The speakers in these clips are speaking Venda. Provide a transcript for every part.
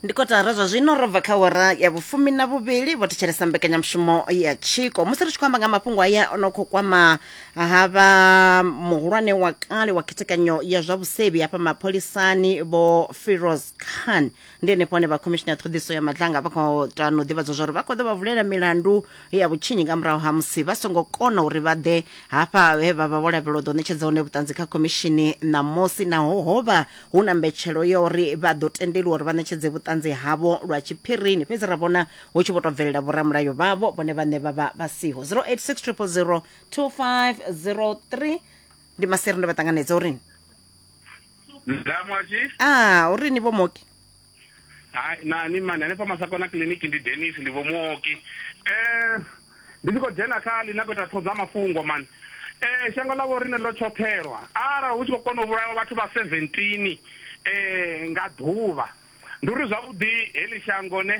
ndi kotara zwa zwino ro bva kha wara ya vhufumi na vhuvhili vho thetshelesa mbekanyamushumo ya tshiko musi ri tshi khou amba nga mafhungo aya o no khou kwama ha vha muhulwane wa kale wa khethekanyo ya zwa vhusevhi hafha mapholisani vho firoz khan ndi henefho hone vha khomishini ya ṱhoḓiso ya madlanga vha khou tano ḓivhadzwa zwa uri vha khou ḓo vha vulela milandu ya vhutshinyi nga murahu ha musi vha songo kona uri vha ḓe hafha he vha vha vho lavhelwa u ḓo ṋetshedza hone vhuṱanzi kha khomishini ṋamusi naho ho vha Hu na mbetshelo ya uri vha ḓo tendelwa uri vha ṋetshedze vhuṱanzi havho lwa tshiphirini, fhedzi ra vhona hu tshi vho tou bvelela vhoramulayo vhavho vhone vhaṋe vha vha vha siho. 086 000 2503 ndi maseri ndo vha ṱanganedza uri. Nda mwashi. Ah, uri ni vho Moki. hai nani mani hanefha masakona kiḽiniki ndi denis ndi vho muoki um ndi tshi khou dzhena kha ḽi na khou ita ṱhoḓa mafhungo mani um shango ḽa vho rine ḽo tshoṱhelwa arali hu tshi khou kona u vhulawa vhathu vha 17 um nga ḓuvha ndi uri zwavhuḓi heḽi shango ne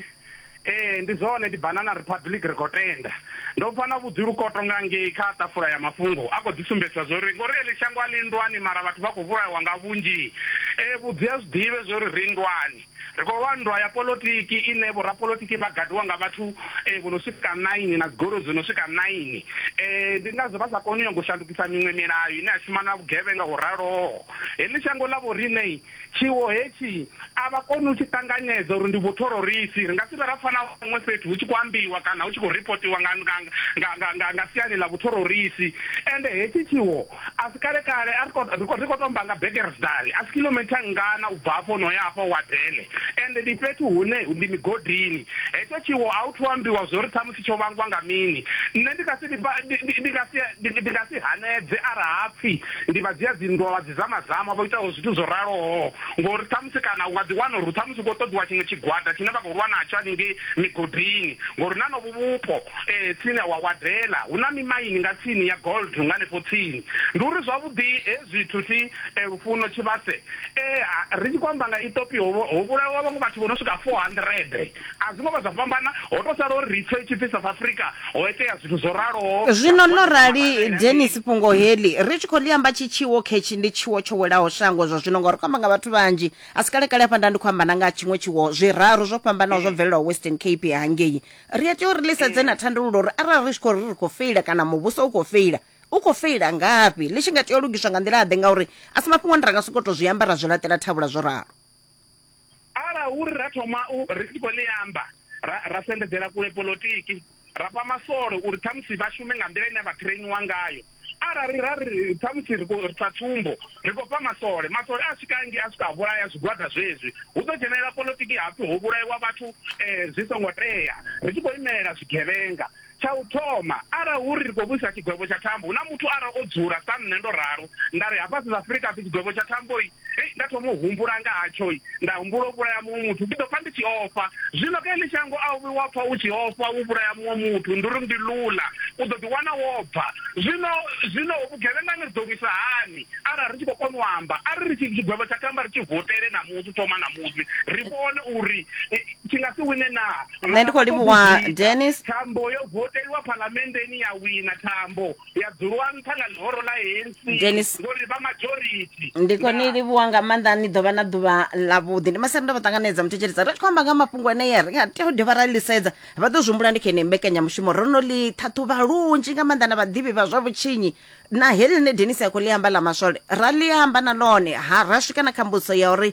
Ee, ndi zwone, ndi Banana Republic ri khou tenda. Ndo pfa na vhudzi lukoto nga ngei kha ṱafula ya mafhungo a khou ḓi sumbedzisa zwa uri ngori eḽi shango a ḽi nndwani mara vhathu vha khou vhulawa nga vhunzhi. Ee, vhudzi a zwi ḓivhe zwa uri ri nndwani. Ri khou lwa nndwa ya polotiki ine vhorapolotiki vha gadiwa nga vhathu vho no swika naini na dzigoloi dzo no swika naini. Ee, ndi ngazwo vha sa koni u nyaga u shandukisa miṅwe milayo ine ya shuma na vhugevhenga ho raloho. Heḽi shango ḽa vhoriṋe Tshiwo hetshi a vha koni u tshi ṱanganedza uri ndi vhuthororisi. Ri nga si vhe ra pfa na huṅwe fhethu hu tshi khou ambiwa kana hu tshi khou ripotiwa nga, nga, nga, nga, nga, nga siani ḽa vhuthororisi. Ende hetshi tshiwo a si kale-kale, a ri khou, ri khou, ri khou tou amba nga Bekersdal, a si kilometer nngana u bva afho no ya afha Wadele, ende ndi fhethu hune ndi migodini. Hetsho tshiwo a hu thu ambiwa zwo ri tsho vhangwa nga mini. Nṋe ndi nga si ndi vha ndi ndi ndi nga si ndi ndi nga si hanedze arali ha pfi ndi vha dzia dzi nndwa vha dzi zama zama vho itaho zwithu zwo raloho ngori ṱhamusi kana u nga ḓi wana uri ṱhamusi hu khou ṱoḓiwa tshiṅwe tshigwada tshine vha khou lwa natsho haningei migodini ngori na novho vhupo tsini ha wa Wadela hu na mimaini nga tsini ya gold nga hanefho tsini. Ndi uri zwavhuḓi hezwi zwithu thi Lufuno Tshivhase ri tshi khou amba nga Ithopia ho vhulawa vhaṅwe vhathu vho no swika 400. A zwo ngo vha zwa fhambana, ho tou sala uri ri pfe hu tshi pfi South Africa ho itea zwithu zwo raloho. Zwino ḽo rali, Dennis, fhungo heḽi ri tshi khou ḽi amba tshi tshiwo khetshi, ndi tshiwo tsho welaho shango zwa zwino, ngauri ri khou amba nga vhathu vhanzhi. A si kale-kale hafha nda ndi khou amba na nga ha tshiṅwe tshiwo, zwiraru zwo fhambanaho zwo bvelelaho Western Cape hangei. Ri a tea uri ri ḽi sedze na thandululo uri arali ri tshi khou ri ri khou feila kana muvhuso u khou feila, u khou feila ngafhi, ḽi tshi nga tea u lugiswa nga nḓila-ḓe, ngauri a si mafhungo ane ra nga sokou tou zwi amba ra zwi laṱela thavhula zwo ralo. ara uri ra thoma u ri tshi khou ḽi amba ra ra sendedzela kule polotiki ra fha masole uri ṱhamusi vha shume nga nḓila ine vha trainiwa ngayo arali ra ri ṱhamusi ri khou sa tsumbo ri khou fha masole masole a swika ngi a swika a vhulaya zwigwada zwezwi hu ḓo dzhenelela polotiki hapfi ho vhulaiwa vhathu um zwi songo tea ri tshi khou imelela zwigevhenga Tsha u thoma, arali hu ri ri khou vhuisa tshigwevho tsha thambo, hu na muthu arali o dzula sa nṋe ndo ralo, nda ri, Hafha South Africa ha pfi tshigwevho tsha thambo-i, hei, nda thoma u humbula nga hatsho-i, nda humbula u vhulaya muṅwe muthu, ndi ḓo pfa ndi tshi ofha. Zwino kha heḽi shango a u vhi wa pfa u tshi ofha u vhulaya muṅwe muthu, ndi uri ndi lula, u ḓo ḓiwana wo bva. Zwino, zwino vhugevhengani ri ḓo vhu isa hani? Arali ri tshi khou kona u amba, a ri ri tshi, tshigwevho tsha tamba ri tshi votele ṋamusi, u thoma ṋamusi, ri vhone uri tshi nga si wine naa. nṋe ndi khou livhuwa denis thambo yo voteliwa phalamenndeni ya wina thambo ya dzuliwa nṱha nga ḽihoro ḽa hensi ngori vha majority ndi khou ni livhuwa nga maanḓa ni ḓo vha na ḓuvha ḽavhuḓi ndi masere ndo vha ṱanganedza muthetshelisa ri tshi khou amba nga mafhungo anea ri nga tea u dovha ra ḽisedza vha ḓo zwihumbula ndi kha ine mbekanyamushumo ro no ḽi ṱhaṱhuvha lunzhi nga maanḓa na vhaḓivhi vha zwa vhutshinyi na heḽi ḽine denis a khou ḽi amba ḽa maswole ra ḽi amba na ḽone ha ra swika na kha mbudziso ya uri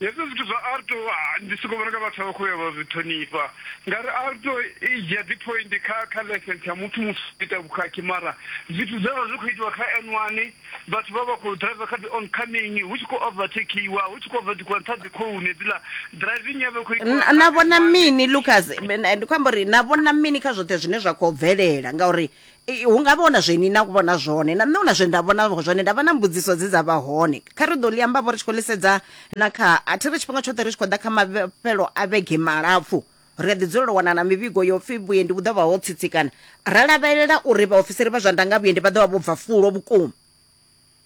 Hezwo zwithu zwa alto ah, ndi soko vhona nga vhathu vha khou ya vha zwi ṱhonifha ngauri alto i dzhia dzi point kha kha license ya muthu musi u ita vhukhakhi mara zwithu zwe zwa zwi khou itiwa kha n one vhathu vha vha khou driver kha dzi oncoming hu tshi khou overtakiwa hu tshi khou overtakiwa nṱha dzi khoune dziḽa driving ya vha i khou itiwa N- kha na N1. vhona mini lucas N- ndi khou amba uri na vhona mini kha zwoṱhe zwine zwa khou bvelela ngauri Hu nga vha hu na zwe ni na vhona zwone na nṋe hu na zwe nda vhona zwone nda vha na mbudziso dze dza vha hone kha ri ḓo ḽi amba vho ri tshi khou ḽi sedza na kha a thi ri tshifhinga tshoṱhe ri tshi khou ḓa kha mafhelo a vhege malapfu ri a ḓi dzulela u wana na mivhigo yo pfhi vhuendi vhu ḓo vha ho tsitsikana ra lavhelela uri vhaofisiri vha zwa ndanga vhuendi vha ḓo vha vho bva fulo vhukuma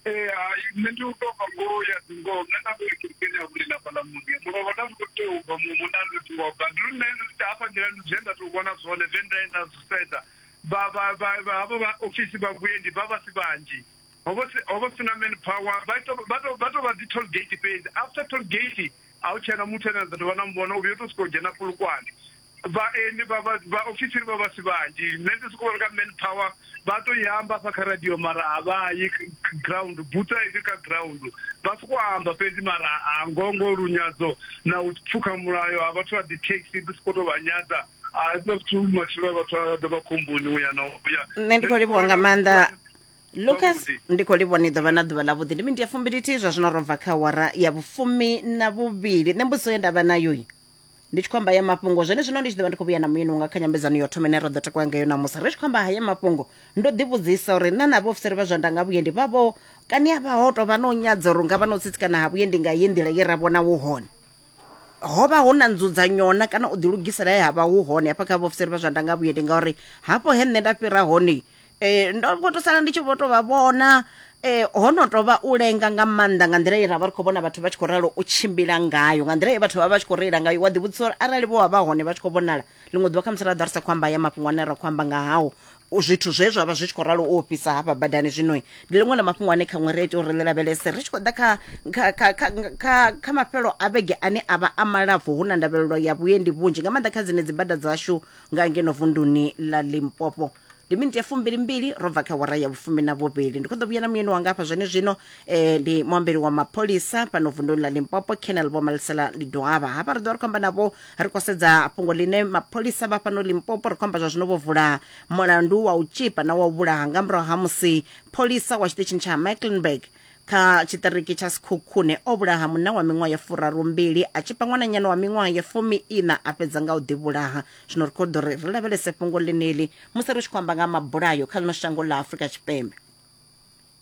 Ee, hai nṋe ndi u tou bva ngoho ya dzi ngoho nṋe nda ndo kerekeni ya vhulila fhaḽa muḓini muno vha nda ndi khou tea u bva muṅwe munna ndi tshi ngo bva ndi lu nṋe ndi ita hafha nḓilani zwe nda tou vhona zwone zwe nda ye nda zwi sedza vha vha vha vha havho vha ofisi vha vhuendi vha vha si vhanzhi ho vha si ho vha si na man power vha tou vha tou vha tou vha dzi toll gate fhedzi after toll gate a hu tshena muthu ane a ḓo tou vha na muvhona u vhuya u tou sokou dzhena fulukwane Vhaeni vha vha vhaofisiri vha vha si vhanzhi nṋe ndi soko vhona nga man power vha to i amba hafha kha radio mara a vha yi ground buthu a isi kha ground vha soko amba fhedzi mara a ngoho ngoho lunyadzo na u pfukha mulayo ha vhathu vha dzi taxi ndi soko to vha nyadza a huna zwithu matshilo a vhathu a ḓo vha khomboni uya na uya nṋe ndi khou livhuwa nga maanḓa lucas Zwavhuḓi. ndi khou livhuwa ni ḓovha na ḓuvha ḽa vhuḓi ndi mindi ya fumbilithihi zwa zwino ro bva kha awara ya vhufumi na vhuvhili nṋe mbudziso ye ndavha nayo ndi tshi khou amba haya mafhungo zwone zwino ndi tshi ḓovha ndi khou vhuya na muyeni wanga kha nyambedzano yo thoma ine ra ḓo takuwa ngayo ṋamusi ri tshi khou amba haya mafhungo ndo ḓivhudzisa uri nṋe na vhaofisiri vha zwa ndanga vhuendi vha vho kani a vha ho tou vha no nyadza uri nga vha no tsitsikana ha vhuendi nga ye nḓila ye ra vhona hu hone ho vha hu na nzudzanyona kana u ḓilugisela he ha vha hu hone hafha kha vhaofisiri vha zwa ndanga vhuendi ngauri hafho he nṋe nda fhira hone Eh, ndo vho to sala ndi tshi vho to vha vhona eh, ho no tou vha u lenga nga maanḓa nga nḓila ye ra vha ri khou vhona vhathu vha tshi khou ralo u tshimbila ngayo nga nḓila ye vhathu vha vha vha tshi khou reila ngayo wa ḓivhudzisa uri arali vho vha vha hone vha tshi khou vhonala ḽiṅwe ḓuvha khamusi ra ḓa ri sa khou amba ya mafhungo ane ra khou amba nga hao u- zwithu zwe zwa vha zwi tshi khou ralo u ofhisa hafha badani zwino ndi ḽiṅwe ḽa mafhungo ane khaṅwe ri ita uri ḽi lavhelese ri tshi khou ḓa kha- kha- kha- kha- kha kha mafhelo a vhege ane a vha a malapfu hu na ndavhelelo ya vhuendi vhunzhi nga maanḓa kha dzine dzi bada dzashu nga ngeno vunduni ḽa limpopo ndi miniti ya fumbili mbili ro bva kha wara ya vhufumi na vhuvhili ndi khou ḓo vhuya na muyeni wanga hafha zwene zwino eh, ndi muambeli wa mapholisa fhano vunduni ḽa limpopo canal vho malisela ndi dohavha hafha ri ḓo vha ri khou amba navho ri khou sedza fhungo ḽine mapholisa vha fhano limpopo ri khou amba zwa zwino vho vula mulandu wa u tshipa na wa u vhulaha nga murahu ha musi pholisa wa tshiṱitshini tsha ha mecklenburg kha tshiṱiriki tsha sikhukhune o vhulaha munna wa miṅwaha ya furaru mbili a tshipa ṅwananyana wa miṅwaha ya fumi ina a fhedza nga u ḓivhulaha zwino ri khou ḓo ri ri lavhelese fhungo ḽeneḽi musi ri tshi khou amba nga ha mabulayo kha ḽino shango ḽa afurika tshipembe